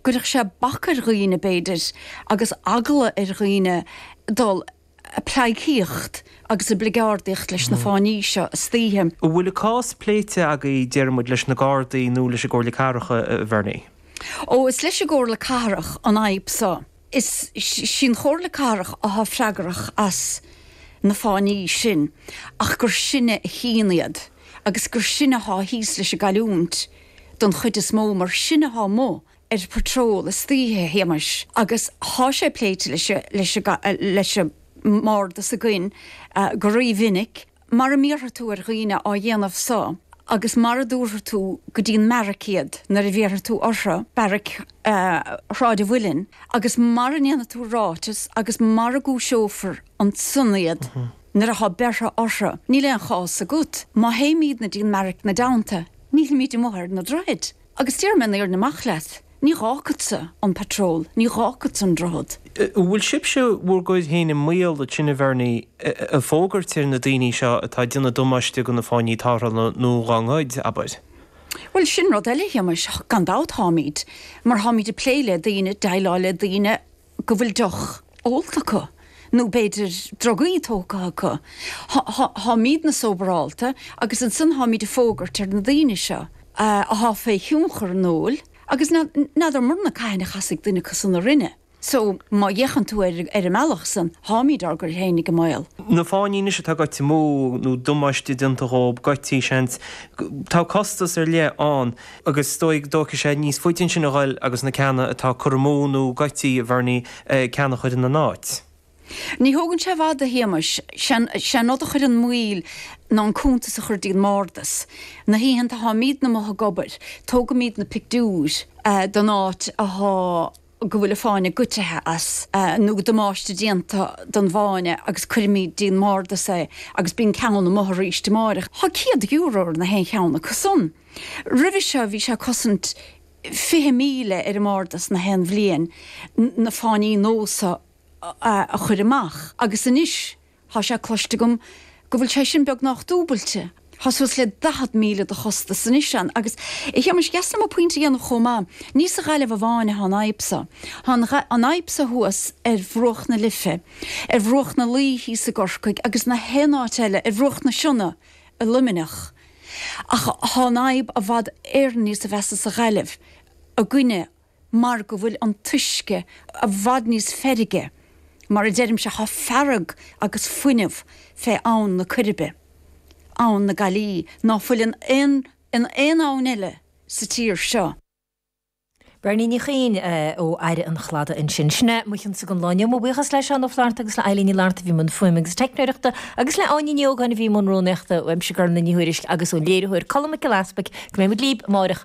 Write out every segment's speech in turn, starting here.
gcuirfeadh sé bac ar dhaoine, b'fhéidir, agus eagla ar dhaoine dul a pleidhcíocht agus a bligeárdaíocht leis na fáinní seo istoíche. An bhfuil an cás pléite agaibh, déarfaidh muid, leis na Gardaí nó leis an gComhairle Cathrach, a Bhernie? Ó, is leis an gComhairle Cathrach an fhadhb so. Is sí an Chomhairle Cathrach athá freagrach as na fáinní sin, ach gur sinne a chíonn iad, agus gur sinne athá thíos leis an gcailliúint. don chuid is mó mar sinne athá amuigh ar patrol istoíche Shéamais agus thá sé pléite leis an mBardas againn go rí-mhinic, mara mbéarfaidh tú ar dhaoine á dhéanamh so agus mara dtabharfaidh tú go dtí an mbearaic iad nuair a bhéarfaidh tú orthu, bearaic Shráid an Mhuilinn, agus mara ndéanfaidh tú ráiteas agus mara gcúiseofar ansan iad nuair a thá beartha orthu. Níl aon chás agat má théimídne dtí'n mbearaic ina dteannta. Nílimid amuigh ar na droichid, agus déarfaidh mé an fhírinne amach leat. Ní fhágfadsa an patról, ní fhágfadsa an droichead. An bhfuil sibhse bhur gcur féin i mbaol le tine a Bhernie a fógairt ar na daoine seo atá ag déanamh damáiste do na fáinní tarrthála nó dá ngoid, abair? Bhuel, sin rud eile, Shéamais, gan dabht, táimid. Mar táimid ag plé le daoine, ag déileáil le daoine. go bhfuil deoch ólta acu, nó b'fhéidir drugaí tógtha acu. Táimídne sóbarálta agus ansan táimíd ag fógairt ar na daoine seo athá fé thionchar an óil, agus n'fheadramarna cathain a chasfaidh duine acu san orainne, so, má fhéachann tú ar an mbealach san, táimíd ár gcur féinig i mbaol. Na fáinní anois atá caite amú, nó damáiste déanta dhóib, goidtí, seans. Tá costas ar leith ann. agus is dóigh go dtógfaidh sé níos faide ansin a dhul agus na ceanna atá curtha amú nó goití a Bhernie, ceann a chur ina n-áit. Ní thógann sé i bhfad, a Shéamais, sé an rud a chuireann moill ná an cuntas a chur dtí an mbardas. Na hoícheanta a tháimídne amuigh ag obair, tógaimíd na pictiúir den áit a thá. go bhfuil an fáinne goidthe as, nó damáiste déanta don bhfáinne agus cuirfimíd dtí'n mbardas é agus bíonn ceann amuigh arís amáireach. Thá céad euro ar na haon cheann acu san. Roimhe seo bhí sé 'cosaint fiche míle ar an mbardas na haon bhliain na fáinní nós a chuir amach agus anois, Thá sé cloiste agam go bhfuil sé sin beagnách dúbailte. Thá suas le daichead míle de chostas anois ann. Agus, a Shéamais, dheas liom an pointe a dhéanamh chomh maith, ní sa Ghaillimh amháin athá an fhadhb so. Thá an fhadhb so thuas ar bhruach na Life, ar bhruach na Laoi thíos i gCorcaigh, agus na haon áit eile, ar bhruach na Sionna i Luimneach. Ach thá an fhadhb i bhfad Éireann níosa mheasa sa Ghaillimh, i gcoinne mar go bhfuil an t-uisce i bhfad níos feirgí, mar a deirimse, tá fearg agus fuinneamh fé abhainn na Coiribe, abhainn na Gaillimhe, ná fuil in aon, in aon abhainn eile sa tír seo. Berni Ní Chuinn ó Fhaire an Chladaigh ansin. Sin é mo chionsa don lá inniu. Mo bhuíochas le Seán Ó Flatharta agus le Eileen Ní Fhlatharta a bhí i mbun fuaime agus teicneoireachta, agus le Áine Ní Ógáin a bhí i mbun rúnaíochta, uaimse Gormfhlaith Ní Thuairisg agus ón léiritheoir Colm Mac Giolla Easpaig. Go mbeidh muid libh amárach.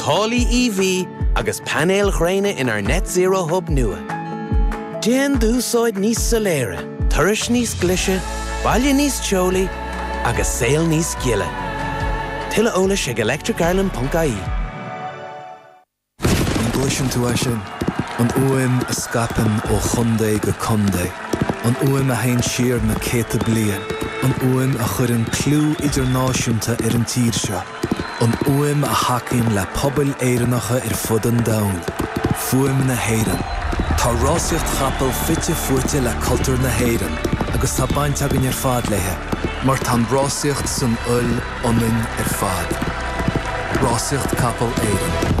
Táillí EV agus painéil ghréine inár Net Zero Hub nua. Déan d'úsáid níos soiléire, turais níos glice, baile níos teolaí agus saol níos gile. Tuilleadh eolais ag electricireland.ie. An gcloiseann tú é sin? An fhuaim a scaipeann ó chontae go contae. An fhuaim a théann siar na céadta bliain. An fhuaim a chuireann clú idirnáisiúnta ar an tír seo. an fhuaim a thacaíonn le pobail Éireannacha ar fud an domhain, fuaim na hÉireann. Tá rásaíocht capall fite fuaite le cultúr na hÉireann agus tá baint againn ar fad léi, mar tá an rásaíocht san fhuil ionainn ar fad, rásaíocht capall Éireann.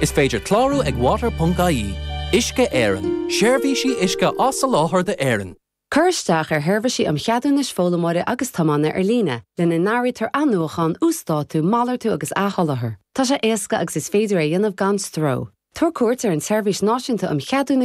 Is féidir clárú ag water.ie. Uisce Éireann, seirbhísí uisce á soláthar d'Éirinn. Cuir isteach ar Sheirbhísí um Cheadúnais Foghlaimeora agus Tiomána ar líne, lena n-áirítear athnuachán, uasdátú, malartú agus athsholáthar. Tá sé éasca agus is féidir é a dhéanamh gan stró. Tabhair cuairt ar an tSeirbhís Náisiúnta um Cheadúnais